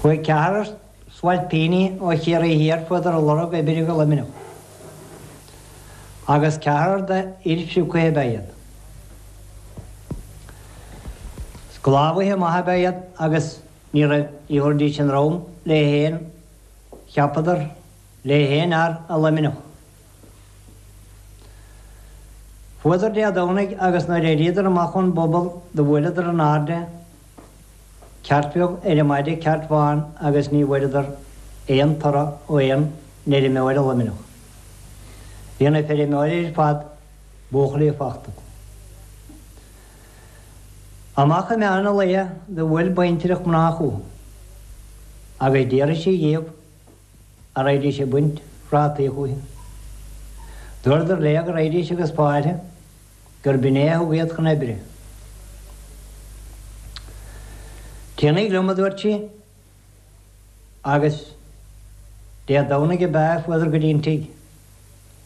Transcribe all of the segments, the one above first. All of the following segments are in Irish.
Chuaigh ceathrar spailpíní ó Chiarraí Thiar fuadar ag lorg oibre go Luimneach, agus ceathrar de fhoilsiú cuiche ab ea iad. Sclábhaithe maithe ab ea iad agus ní raibh ní thabharfaidís a ndrom le haon, cheapadar, le haon fhear i Luimneach. Fuadar Dé Domhnaigh agus nuair éiríodar amach ón bpobal do bhuaileadar in airde ceirt bheag ar an maide ceirt bhán agus ní bhfuaireadar aon toradh ó aon fheirmeoir i Luimneach. Bhí na feirmeoirí ar fad buachaillí fachta acu. Amach i meán an lae do bhuail baintreach mná chucu agus d'iarraidh sí dhíobh an raghaidís ag baint phrátaí chúithi. Dúradar léi go raghaidís agus fáilte gurb in é a thug iad chun oibre. Téanaíg liom, a dúirt sí, agus Dé Domhnaigh ab ea a fuadar go dtí an tigh.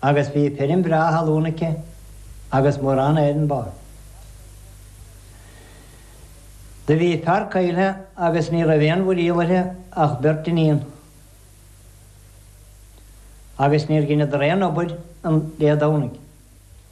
agus bhí feirm bhreá thalún aici agus mórán áireamh ba. Do bhí a fear caillte agus ní raibh aon mhuiríol uirthi ach beirt iníon, agus níor dheineadar aon obair an Dé Domhnaigh.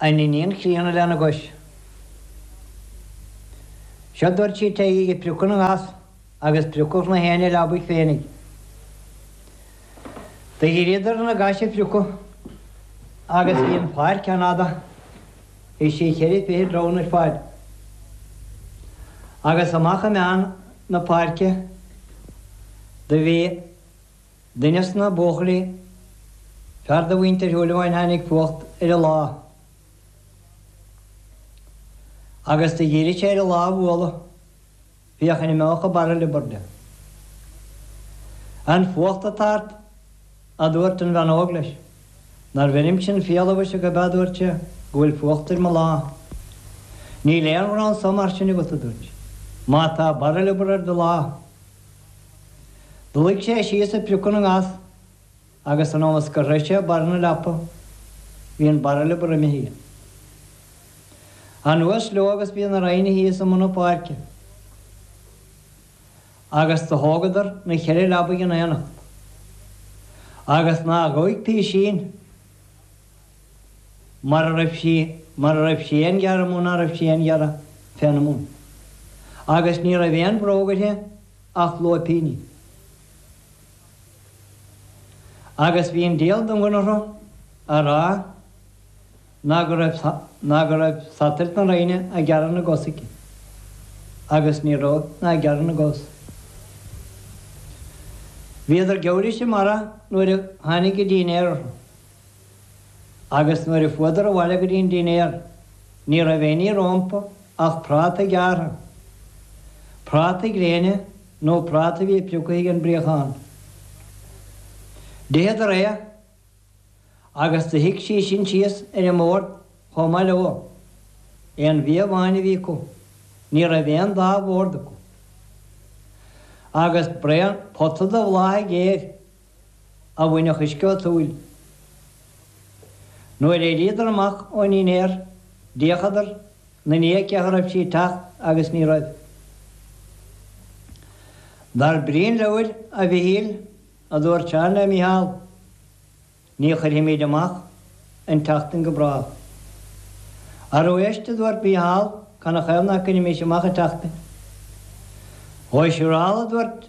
An iníon chríonna lena gcois. Seo dúirt sí téigí ag priocadh na ngas agus priocadh nach éinne a leabaidh féinig. Do dhíríodar ar na gais a phriocadh agus bhí an pháirc an-fhada, bhí sí cheithre fichid rámhainn ar fad. Agus amach i meán na páirce do bhí. Duine des na buachaillí, fear de mhuintir Shúilleabháin tháinig fuacht ar a lámh agus do dhírigh sé ar a lámh a bhualadh féachaint an imeochadh an barra liobar de. An fuacht atá ort, adubhairt an bhean óg leis. Nar bheirim sin fial a mhuise gurb ea adubhairt sé, go bhfuil fuacht ar mo lámh. Níl aon ghrá anso mar sin agat, adubhairt sí, má tá barra liobar ar do lámh. Luigh sé síos ag priocadh na ngas agus an am is gur shroich sé barr na leapa bhí an barra liobar imithe anuas leo agus bhí na ráinní thíos i mbun na páirce agus do thógadar na cheithre leabaidh in aonacht agus ná ghoic písín mar a raibh sí, mar a raibh sí aon ghearradh mó ná raibh sí aon ghearradh féna muin, agus ní raibh aon bhróg uirthi ach lóipíní. Agus bhí an dial don ghnoithe a rá ná go raibh, ná go raibh satailt na rámhainne a' gearradh na gcos aici, agus ní raibh, ná ag gearradh na gcos. Bhíodar giorraisc i mbarra nuair a tháinig an dínnéar orthu. agus nuair a fuadar abhaile go dtí an dinnéar ní raibh éinní rómpa ach prátaí gearrtha, prátaí gréine nó prátaí a bhí prioctha ag an bpríochán. D'itheadar é agus do shuigh sí sin síos ar an mbord chomh maith leo. Aon bhia amháin a bhí acu. Ní raibh aon dá bhord acu agus braon pota de bhláthaigh ghéar. a bhainfeadh uisce ód shúil. Nuair éiríodar amach ón ndinnéar d'fhéachadar 'na ndiaidh cé a raibh sí teacht agus ní raibh. Dar brí an leabhair, a Mhichíl, a dúirt Seán le Micheál, ní chuirfimíd amach an tseachtain go bráth. Arú éist, a dúirt Micheál, canathaobh nach gcuirimis amach an tseachtain. Dhóigh siúrálta, a dúirt.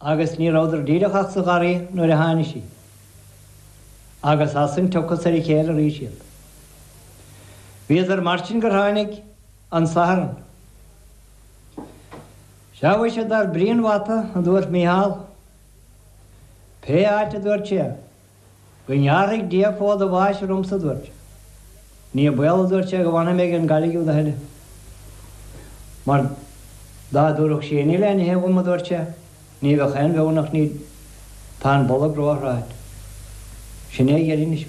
agus ní rabhadar díreach ach sa gharraí nuair a tháinigh sí, agus as san tiocfas ar a chéile arís iad. Bhíodar mar sin gur tháinig an Satharn. Sea, mhuise, dar brí an bhata, a dúirt Micheál, pé áit a dúirt sé. go ngearrfaidh Dia fód an bháis ormsa, a dúirt sé. Ní baol, a dúirt sé, go bhfanfaidh mé ag an gcailligh úd a thuilleadh, mar dá dtabharfadh sí aon ní le n-ithe dhom, a dúirt sé, ní bheadh aon bheoir nach n-íd. Tá an bolg ró-thráite. Sin é a dheireadh anois.